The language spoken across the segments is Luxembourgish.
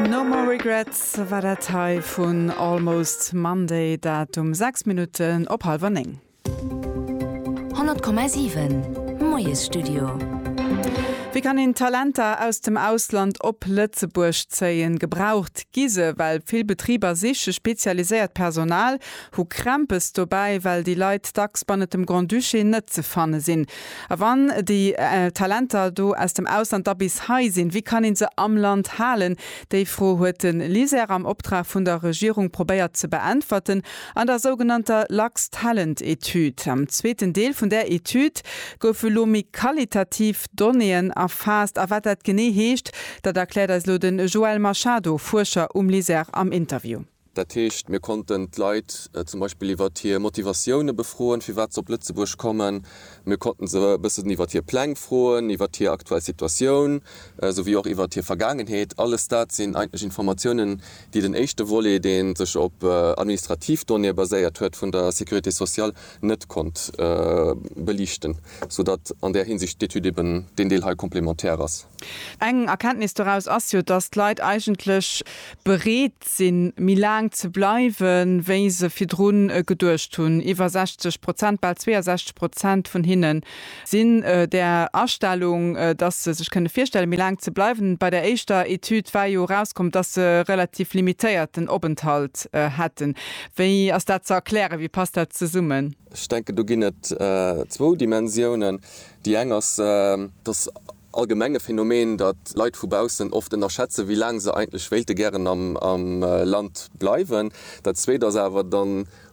No More Regrets war dat hei vun Almost Monday, dat um 6 Minutten op hallwer 9. 100,7 Moiesstudio. Wéi kann een Talenter aus dem Ausland op Lëtzebuerg zéien? Gebraucht gi se, well vill Betriber siche spezialiséiert Personal, hu Krämpes dobäi, well déi Leit dacks bannent dem Grand-Duché net ze fanne sinn. A wann déi Talenter do aus dem Ausland da bis hei sinn, wéi kann ee se am Land halen? Déi Fro huet de LISER am Optrag vun der Regierung probéiert ze beäntwerten an der sougenannter Luxtalent-Etüd. Am zweeten Deel vun där Etüd goufe elo méi qualitativ Donnéeën erfaasst. A wat dat genee heescht, dat erkläert eis elo de Joel Machado, Fuerscher um LISER am Interview. Dat heescht, mir konnten d'Leit zum Beispill iwwert hir Motivatioune befroen, firwat se op Lëtzebuerg kommen. Mir konnte se e bëssen iwwert hir Pläng froen, iwwert hir aktuell Situatioun, souwéi och iwwert hir Vergaangenheet. Alles dat sinn eigentlech Informatiounen, déi den éischte Volet, dee sech op administrativ Donnéeë baséiert huet, vun der Sécurité sociale net konnt beliichten, soudatt an där Hinsicht d'Etüd eben deen Deel hei complémentaire ass. Eng Erkenntnis doraus ass jo, dass d'Leit eigentlech bereet bereet sinn, méi laang ze bleiwen, wéi se virdru geduecht hunn. Iwwer 60 Prozent, bal 62 Prozent vun hinne sinn där Astellung, dass se sech kënne virstellen, méi laang ze bleiwen. Bei der éischter Etüd war jo erauskomm, dass se e relativ limitéierten Openthalt hätten. Wéi ass dat ze erklären? Wéi passt dat zesummen? Ech denken, do ginn et zwou Dimensiounen. Déi eng ass, dass Allgemeng e Phänomen, datt Leit vu baussen oft ënnerschätzen, wéi laang se eigentlech wéilte gären am Land bleiwen. Dat Zweet ass awer, da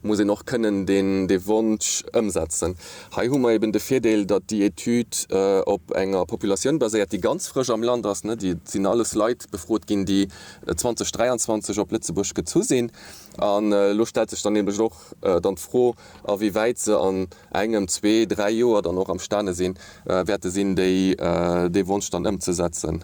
muss een och kënnen dee Wonsch ëmsetzen. Hei hu mer eben de Virdeel, datt déi Etüd op enger Populatioun baséiert, déi ganz frësch am Land ass. Et sinn alles Leit befrot ginn, déi 2023 op Lëtzebuerg gezu sinn. An elo stellt sech dann nämlech och dann d'Fro, a wéi wäit se an engem, zwee, dräi Joer dann och am Stane sinn, wäerte sinn, déi, dee Wonsch dann ëmzesetzen.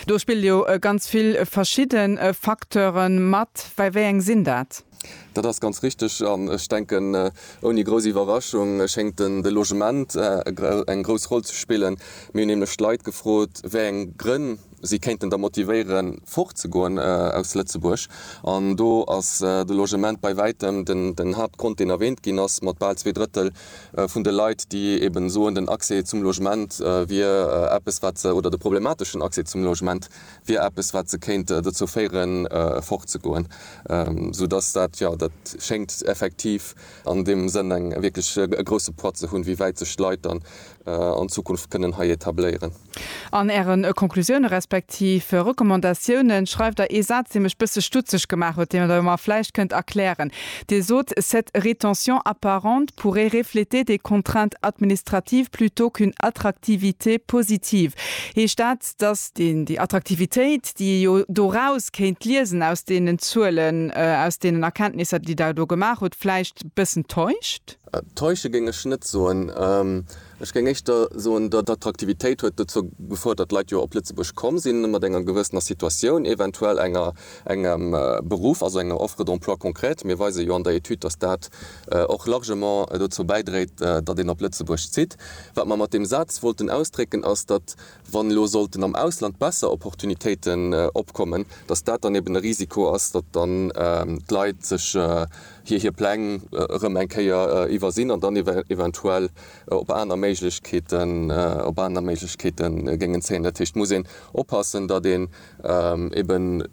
Do spille jo ganz vill verschidde Facteure mat. Wei wei eng sinn dat? Dat ass ganz richteg. An ech denken, ouni grouss Iwwerraschung schéngt den, de Logement eng grouss Roll ze spillen. Mir hunn nämlech d'Leit gefrot, wéi eng Grënn, si kéinten da motivéieren, fortzegoen aus Lëtzebuerg. An do ass de Logement bei wäitem den Haaptgrond, deen erwähnt ginn ass, mat bal zwee Drëttel vun de Leit, déi eeben soen, den Accès zum Logement wier eppes, wat se, oder de problemateschen Accès zum Logement wier eppes, wat se kéint dozou féieren, fortzegoen. Soudass dat, jo, dat schéngt effektiv an deem Sënn eng wierklech e grousse Poids ze hunn, wéi wäit sech d'Leit dann an Zukunft kënnen hei etabléieren. An Ären Konklusioune respektiv Recommandatiounen schreift Der ee Saz, dee mech bësse stutzeg gemaach huet, deen Der mer vläicht kënnt erklären. Dir sot, Cette rétention apparente pourrait refléter des contraintes administratives plutôt qu'une attractivité positive. Heescht dat, dass déi Attraktivitéit, déi ee jo doraus kéint liesen, aus deenen Zuelen, aus deenen Erkenntnisser, déi Der do gemaach hutt, vläicht bëssen täuscht? Täusche géing ech net soen. Ech géing éischter soen, d'Attraktivitéit huet dozou gefouert, datt Leit jo op Lëtzebuerg komm sinn, mat enger gewëssener Situatioun, eventuell enger, engem Beruff, also enger Offre d'emploi concrète. Mir weise jo an der Etüd, datt dat och largement dozou bäidréit, datt een op Lëtzebuerg zitt. Wat mer mat deem Saz wollten ausdrécken, ass, datt, wann elo sollten am Ausland besser Opportunitéiten opkommen, datt dat dann eben e Risiko ass, datt dann d'Leit sech hir hir Pläng erëm eng Kéier iwwersinn an dann eventuell op aner Méiglechkeeten op aner Méiglechkeete géingen zéien. Dat heescht, et muss een oppassen, datt een eben,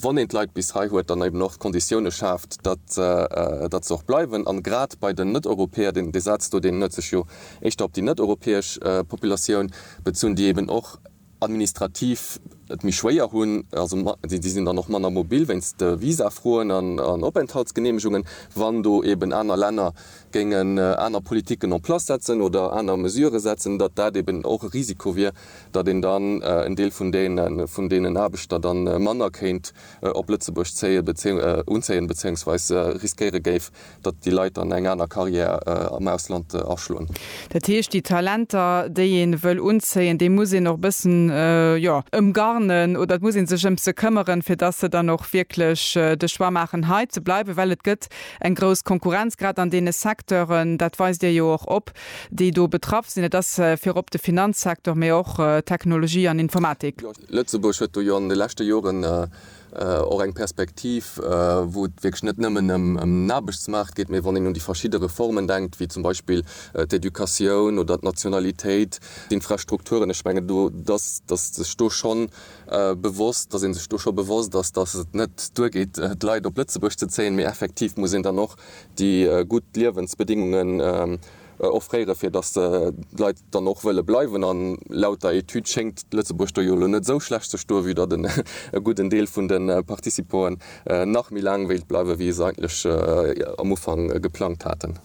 wann een d'Leit bis hei huet, dann eben och d'Konditioune schaaft, datt datt se och bleiwen. A grad bei den Net-Europäer, deen dee Saz do, deen huet sech jo éischter op déi net-europäesch Populatioun bezunn, déi eben och, administrativ et méi schwéier hunn, also déi sinn dann och manner mobil wéinst de Visafroen an Openthaltsgeneemegungen, wann do eeben aner Länner géingen aner Politiken en place setzen oder aner Mesurë setzen, datt dat eeben och e Risiko wier, datt een dann en Deel vun deenen Aarbechter da manner kéint op Lëtzebuerg zéien, unzéien, beziéungsweis riskéiere géif, datt déi Leit dann eng aner Carrière am Ausland aschloen. Dat heescht, déi Talenter, déi ee wëll unzéien, déi muss een och e bëssen, jo, ëmgarnen oder et muss ee sech ëm se këmmeren, fir datt se dann och wierklech de Choix maachen, hei ze bleiwen. Well et gëtt eng grouss Konkurrenz, grad an deene Secteuren, dat weist Dir jo och op, déi do betraff sinn. Et ass virop de Finanzsecteur, mee och Technologie an Informatik. Lëtzebuerg huet do jo an de leschte Joren Och eng Perspektiv, wou et wierklech net nëmmen ëm den Aarbechtsmaart geet, mee wann een un déi verschidde Reformen denkt, wéi zum Beispill d'Educatioun oder d'Nationalitéit, d'Infrastrukturen, ech mengen, do ass sech do scho bewosst, datt ee sech do scho bewosst ass, datt et net duergeet, d'Leit op Lëtzebuerg ze zéien, mee effektiv muss een dann och déi gutt Liewensbedingungen, offréiere fir datt d'Leit dann och wëlle bleiwen. A laut der Etüd schéngt Lëtzebuerg do jo elo net esou schlecht ze stoe vue datt en e gudden Deel vun de Participoen nach méi laang wéilt bleiwe wéi se eigentlech am Ufank geplangt haten.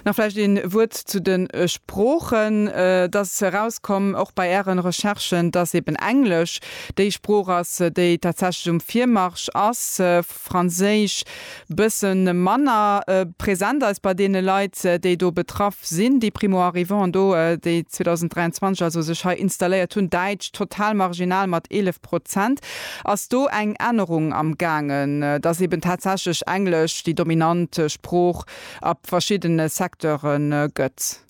Nach vläicht een Wuert zu den Sproochen. Et ass erauskomm, och bei Ären Recherchen, datt eben Englesch déi Sprooch ass déi tatsächlech um Virmarsch ass. d'Franséisch bësse manner present ass bei deene Leit, déi do betraff sinn, déi Primo-Arrivanten do, déi 2023 also sech hei installéiert hunn. Däitsch total marginal mat 11 Prozent. Ass do eng Ännerung am gaangen, dass eben tatsächlech Englesch déi dominant Sprooch a verschiddene Secteure gëtt?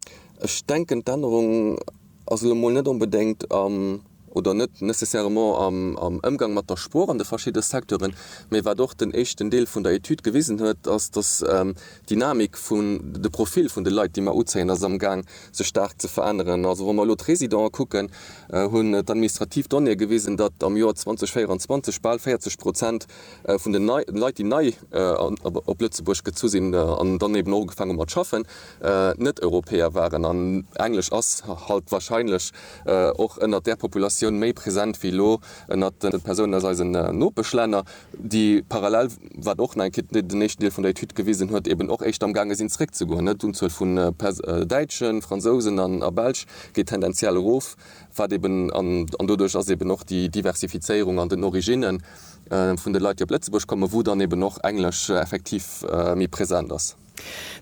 Ech denken d'Ännerung. ass elo mol net onbedéngt am, oder net nécessairement am, am Ëmgang mat der Sprooch an de verschidde Secteuren, mä wat och den éischten Deel vun der Etüd gewisen huet, ass, dass d'Dynamik vun, de Profil vun de Leit, déi mer uzéien, ass amgaang sech staark ze veränneren. Also wa mer elo d'Résidenten kucken, hunn d'administrativ Donnéeë gewisen, datt am Joer 2024 bal 40 Prozent vun den Leit, déi nei op Lëtzebuerg gezu sinn an dann eeben och ugefaangen hu mat schaffen, Net-Europäer waren, an Englesch ass halt wahrscheinlech och ënnert där Populatioun méi present wéi elo ënnert de Persounen aus eisen Nopeschlänner, déi parallel, wat och nach eng Kéier den éischten Deel vun der Etüd gewisen huet, eben och éischter am gaange sinn zeréckzegoen. D'Unzuel vun Däitschen, Fransousen a Belsch geet tendenziell erof, wat eben, an doduerch ass eben och déi Diversifizéierung an den Origine vun de Leit, déi op Lëtzebuerg kommen, wou dann eben och Englesch effektiv méi present ass.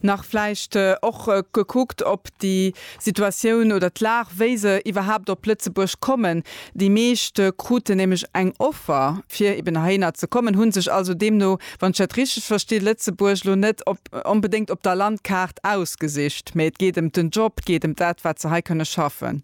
Nach vläicht och gekuckt op déi Situatioun oder d'Lag, wéi se iwwerhaapt op Lëtzebuerg kommen. Déi meescht kruten nämlech eng Offer, fir eben heihinner ze kommen, hu sech also deemno, wann ech dat richteg versti, Lëtzebuerg elo net onbedéngt op der Landkaart ausgesicht, mä et geet ëm den Job, et geet ëm dat, wat se hei kënne schaffen.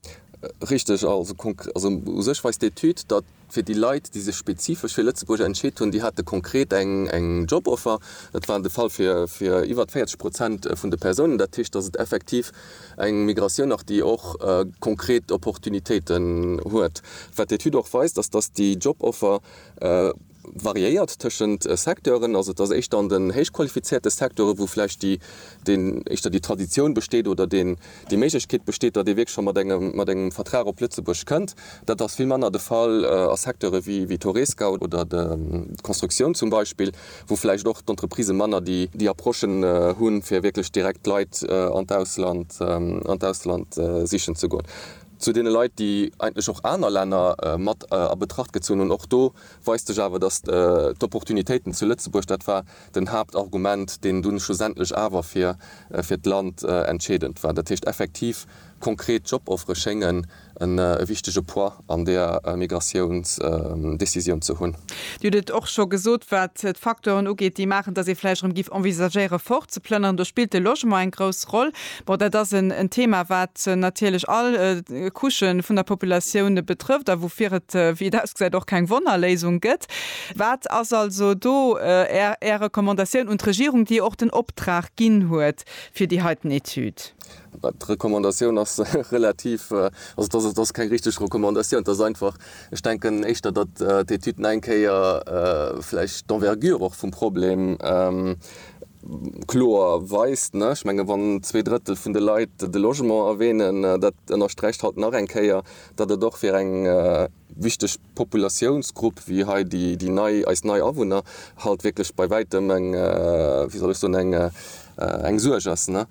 Richteg. Also u sech weist d'Etüd, datt Fir déi Leit, déi sech spezifesch fir Lëtzebuerg entscheet hunn, déi hate konkret eng Joboffer. Dat war de Fall fir iwwert 40 Prozent vun de Persounen. Dat heescht, datt et effektiv eng Migratioun ass, déi och konkret Opportunitéiten huet. Wat d'Etüd och weist, ass, datt déi Joboffer variéiert tëschent Secteuren. Also et ass éischter an den héichqualifizéierte Secteure wou vläicht déi éischter déi Traditioun besteet oder deen Déi Méiglechkeet besteet, datt ee wierklech scho mat engem, mat engem Vertrag op Lëtzebuerg kënnt. Dat ass vill manner de Fall a Secteure wéi d'Horeca oder d'Constructioun zum Beispill, wou vläicht och d'Entreprisë manner déi Approche hunn, fir wierklech direkt d'Leit an d'Ausland, an d'Ausland sichen ze goen. Zu deene Leit, déi eigentlech och aner Länner mat a Betracht gezunn hunn, och do weist sech awer, datt d'Opportunitéiten zu Lëtzebuerg, dat war den Haaptargument, deen dunn schlussendlech awer fir fir d'Land entscheedend war. Dat heescht effektiv, konkret Joboffere schéngen en e wichtege Poids an där Migratiounsdecisioun ze hunn. Dir hutt et och scho gesot, wat d'Facteuren ugeet, déi maachen, datt ee vläicht erëm géif envisagéiere fort ze plënneren. Do spillt de Logement eng grouss Roll. Bon, dat ass en Thema, wat natierlech all Couche vun der Populatioun betrëfft a woufir et, wéi et ausgesäit, och keng Wonnerléisung gëtt. Wat ass also do Är Recommandatioun un d'Regierung, déi jo och den Optrag ginn huet fir déi heiten Etüd? D'Recommandatioun ass relativ, also dass ass keng richteg Recommandatioun, et ass einfach, ech denken éischter, datt d'Etüd nach eng Kéier vläicht d'Envergure och vum Problem kloer weist. Ech menge wann zwee Drëttel vun de Leit de Logement erwänen, dat ënnersträicht halt nach eng Kéier, datt et och fir eng wichteg Populatiounsgrupp wéi hei déi, déi nei, eis nei Awunner, halt wierklech bei wäitem eng, wéi soll ech soen, eng, eng Suerg ass. Ne?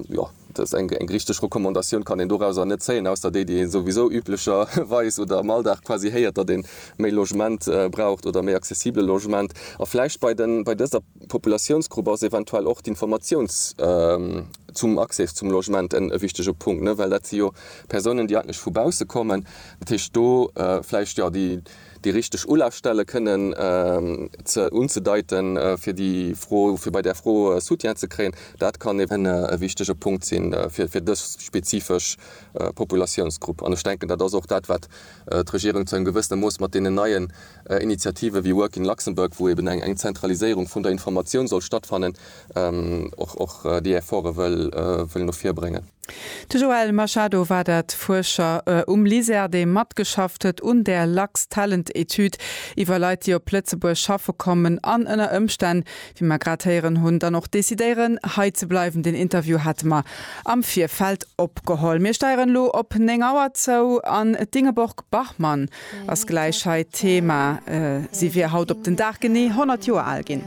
Jo, dass eng, eng richteg Recommandatioun kann een dorauser net zéien, ausser déi, déi ee souwisou üblecherweis oder am Alldag quasi héiert, datt ee méi Logement braucht oder méi accessible Logement. A vläicht bei den, bei dëser. Populatiounsgrupp ass eventuell och d'Informatiouns zum Accés zum Logement en e wichtege Punkt, ne, well dat si jo Persounen, déi eigentlech vu bausse kommen. Dat heescht, do vläicht, jo, déi, déi richteg Ulafstelle kënnen ze, unzedeiten, fir déi Fro, fir bei där Fro Soutien ze kréien, dat kann eben e wichtege Punkt sinn, fir, fir dës spezifesch Populatiounsgrupp. An ech denken, dat ass och dat, wat d'Regierung zu engem gewëssene Mooss mat deenen neie Initiative wéi Work in Luxembourg, wou eben eng Zentraliséierung vun der Informatioun soll stattfannen, och déi Efforte wëll no vir bréngen. De Joel Machado war dat, Fuerscher um LISER, dee matgeschafft huet un där Lux-Talent-Etüd iwwer Leit, déi op Lëtzebuerg schaffe kommen an ënner Ëmstänn, wéi mer grad héieren hunn, dann och decidéieren, hei ze bleiwen. Deen Interview hate mer am Virfeld opgeholl. Mir steieren elo op néng Auer zou an d'Ingeborg Bachmann ass gläich hei d'Thema. Si wier haut op den Dag genee 100 Joer al ginn.